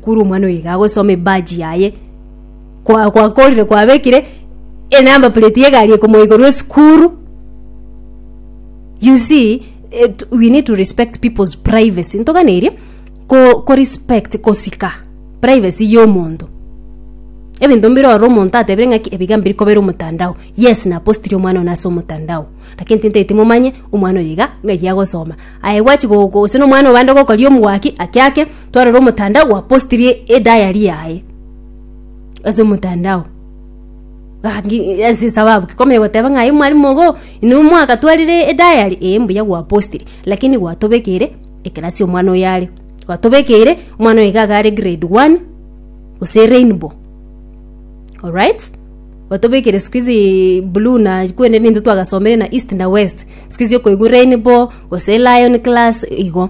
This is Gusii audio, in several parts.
Kuru omwana oyo iga agosoma ebaji yaye kwa- kwakorire kwabekire enamba plate yegari ekomoikorwa esukuru you see it, we need to respect people's privacy ntoganeria ko, ko respect kosika privacy yomonto ebinto mbire oro omonto atebire ng'aki ebiga mbiri kobera omotandao yes napostiri omwana one ase omotandao lakini tintaeti momanye omwana oyo iga ng'ai agosoma aye gwachi go- go gose nomwana obande gokoria omwaki ake ake twarora omotandao gwapostirie edayari yaye ase omotandao sababu ki komanya goteba ng'a aye omwarimu igo inwe mwakatwarire edayari ee mbuya gwapostire lakini gwatobekeire ekerasi omwana oyo are gwatobekeire omwana oyo iga are grade one gose rainbow orit gwatobekeire sikuizi blue na kwende nintwe twagasomire na east na west sikuizi okoigwa rainbow gose lion class igo.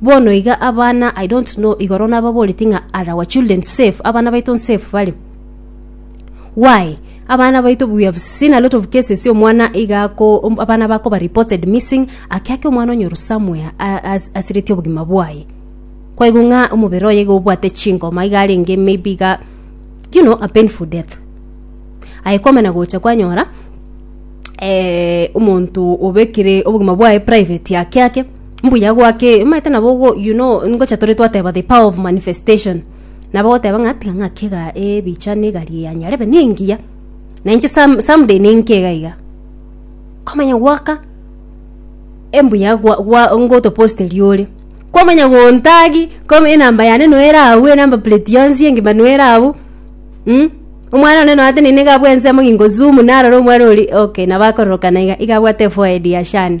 Bono iga abana I don't know igoro nababoreti ng'a are our children safe abana baito nsafe bare why abana baito we have seen a lot of cases omwana iga ako om- abana bakoba reported missing ake ake omwana onyoru somewhere a- as- asireti obogima bwaye kwaigo ng'a omobere oye iga obwate chingoma iga arenge maybe iga you know a painful death aye kwamana gocha kwanyora eh, omonto obekire obogima bwaye private ake ake Mbuya gwake, omanyete nabo ogo, you know, ngocha tore twateba the power of manifestation. Nabo goteba ng'a tiga ng'ake iga ebicha na egari ya nyarebe na engiya. Na inche some, someday na enke iga iga. Komanya gwaka embuya gwa, gwa ngotoposte riore. Komanya gontagi, kom enamba yane no ere abwo, enamba plate yonsi engima no ere abwo. Mm? Omwana one noate nene iga abwo ensemo ng'ingo zoom narora omwana ori, okay, nabo akororokana iga, iga abwate forehead ya Shani.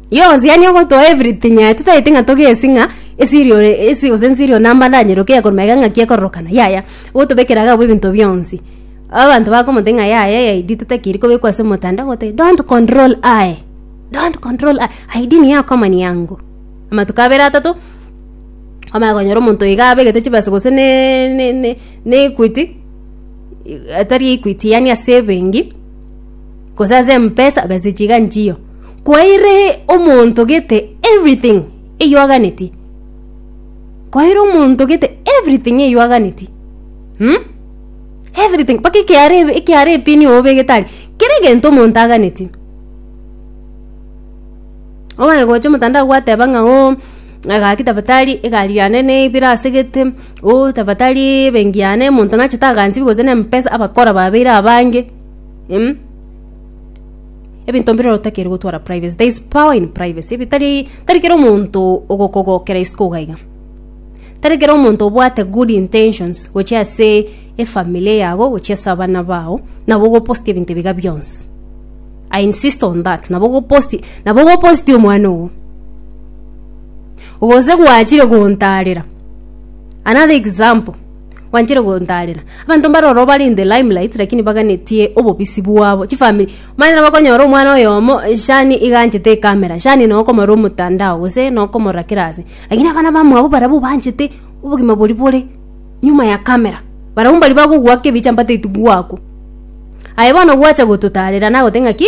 Yonsi yaani ogotoa everything aye totagete ng'a togesi ng'a esiri ore esi gose nsiri one amba ndanyeroke yakorwa magega ng'aki ekororokana yaya gotobekera gabo ebinto bionsi abanto bakomotebia ng'a yaya eid totakiri kobekwa ase omotandao agotebia don't control I don't control I aid nigo ekoma ni yangu amatuko abere atato kwamanya konyora omonto iga abegete chibesa gose ne ne ne ne equity i- atari equity yaani ase ebengi. gose ase empesa besa echiga nchiyo kwaire omonto gete everything eywaganeti kwaire omonto gete everything eywaganeti mm? everything mpaka ekeara ebe- ekeara epini obegete aria kera egento omonto aganeti ogaye gocha omotandao gwateba ng'a oo egaki tafadhali egari yane nebire asegete oo tafadhali ebenki yane omonto nachete agansibe gose na empesa abakora babeire abange. Em? ebinto mbirero otakeri gotwara privacy there is power in privacy ebitari tari kera omonto ogokogokera isiko ugaiga tari kera omonto obwate good intentions gochi ase efamily yago gochi ase abana bao nabo ogoposti ebinto ebiga bionsi i insist on that nabo ogoposti nabo ogoposti omwana ogo gose gwachire gontarera another example Wanchire gontarera. Abanto mbare oro bare in the limelight lakini baganetie obobisi bwabo. Chifamiri. Manyara bakonyora omwana oyomo eh, shani iganchete ekamera. Shani no okomora omotandao gose no okomora kera ase. Lakini abana bamwabo barabwo banchete obogima bori bore nyuma ya kamera. Barabwo mbari bagogwaka ebicha mbateiti gwakwa. Aye bono gwacha gototarera nagote ng'aki.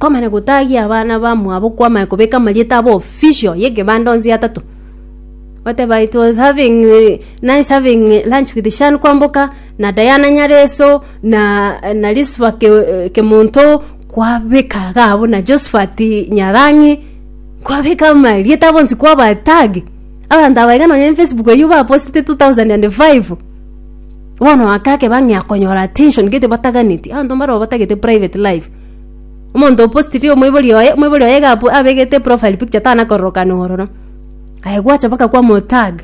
Kwamana gotagia abana bamwabo kwamana kobeka amarieta abo official y'egebanda onsi atato goteba it was having nice having lunch with Shan kwamboka na Diana Nyareso na na Lisifa Ke- Kemonto kwabeka iga abwo na Josphat Nyarang'i kwabeka amarieta abo onsi kwaba tag abanto aba iga nonye en Facebook eywo bapostete two thousand and five bono ake akeba ng'a akonyora attention gete bataganeti abanto mbarobwo batagete private life. Omonto opostiri omoibori oye, omoibori oye iga apo- abegete profile picture tana kororokana ororo. Aye gwacha mpaka kwa mo tag.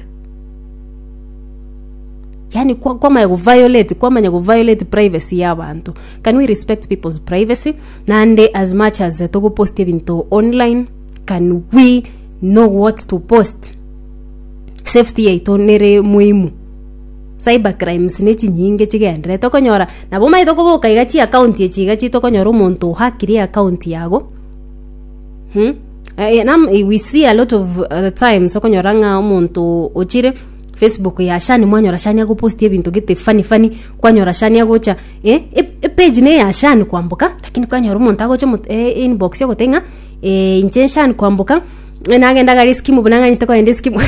Yaani kwa- kwamanya go violate kwamanya go violate privacy ya abanto. Can we respect people's privacy? Naende as much as togopost ebinto online, can we know what to post? Safety yaito nere muhimu. Cyber crimes nechi nyinge chigenderete okonyora nabo maete koboka iga chi account echi iga chito konyora omonto ohakire e account yago hmm? Eh, nam, eh, we see a lot of uh, times okonyora ng'a omonto ochire facebook ya shani mwanyora shani agoposti ebinto gete fani fani kwanyora shani agocha eh, e- epage ne ya shani kwamboka lakini kwanyora omonto agocha omo- eh, inbox ogoteba ng'a eh, inche shani kwamboka nagenda gari skimu buna ng'anyete kogenda eskimu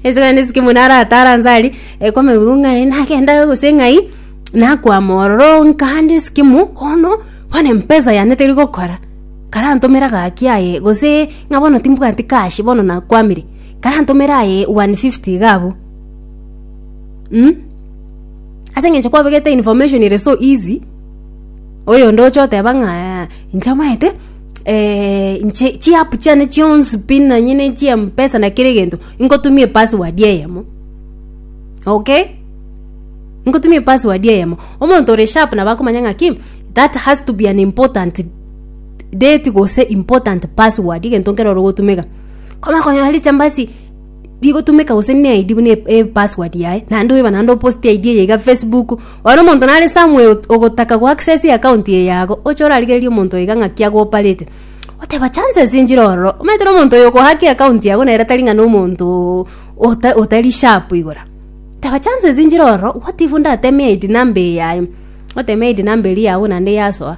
nagenda eskimu naratara nse aria ekomegwa ng'ai nagenda gose ng'ai nakwama ororo nkande eskimu bono bono empesa yane teri gokora karantomera gaki aye gose ng'a bono timbwati cash bono nakwamire karantomera aye one fifty iga abwo mh ase eng'encho kwabegete information ere so easy oyonde oche oteba ng'a inche amaete. eh, nche- chiapu chiane chionsi pi nonye ne chiempesa na kere egento inkotumia epassword eyemo okay nkotumia epassword eyemo omonto ore sharp nabo akomanya ng'aki that has to be an important date gose important password egento nkero ore gotumeka komanya konyora richa mbasi rigotumeka gose ne ID buna e- epassword yaye naende oeba naende opost ID eye iga facebook bono omonto nare somewhere ot- ogotaka go access account eye yago oche orarigererie omonto oyo iga ng'aki agoparete oteba chances nchire ororo omanyete na omonto oyo okohack account yago nere tari ng'a na omonto oo ota otari sharp igoro teba chances nchire ororo what if ndateme ID number eyaye oteme ID number eria yago naende yasoa.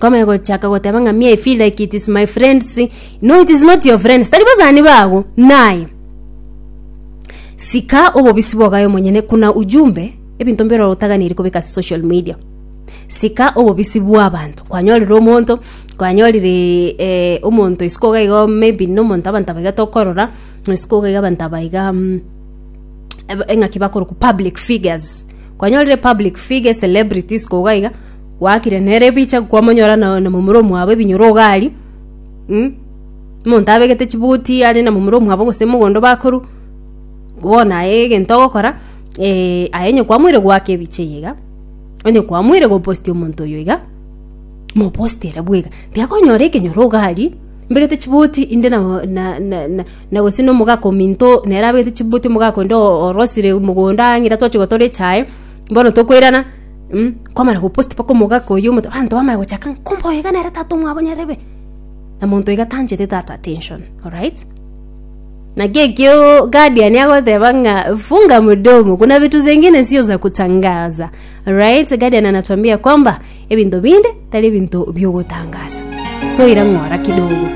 Koma egochaka goteba ng'a me I feel like it is my friends. No it is not your friends. Tari basani bago. Naye. Sika obobisi bwogayo monyene kuna ujumbe ebinto mbiroro otaganiri kobeka ase social media. Sika obobisi bw'abanto. Kwanyorire omonto, kwanyorire eh, omonto isiko iga igo maybe nomonto abanto abaiga tokorora, isiko iga iga abanto abaiga mm, eb- eng'aki bakoroku public figures. Kwanyorire public figure celebrities koga iga gwakire nere ebicha kwamonyora na na momura omwabo ebinyoro iga aria mm, omonto abegete chibuti are na momura omwabo gose mogondo bakoru, bono aye egento ogokora eh, aye onye kwamoire goaka ebicha eye iga, onye kwamoire gopost omonto oyo iga, mopost ere bwega, tiakonyora ekenyoro iga aria, mbegete chibuti inde na na na na na gose na omogaka ominto nere abegete chibuti omogaka onde o- orosire mogondo ang'e rirotochi gotora echae, bono tokoirana. mm, kwamara gopost paka omogaka oyo omote abanto bamaya gochaka ng'a, kumbe oyo iga nere tata omwabo nyarebe na monto iga tanchete that attention alright naki ekio guardian agoteba ng'a funga mdomo kuna vitu zingine sio za kutangaza alright guardian anatuambia kwamba ebinto binde tari ebinto biogotangaza toira ng'ora kidogo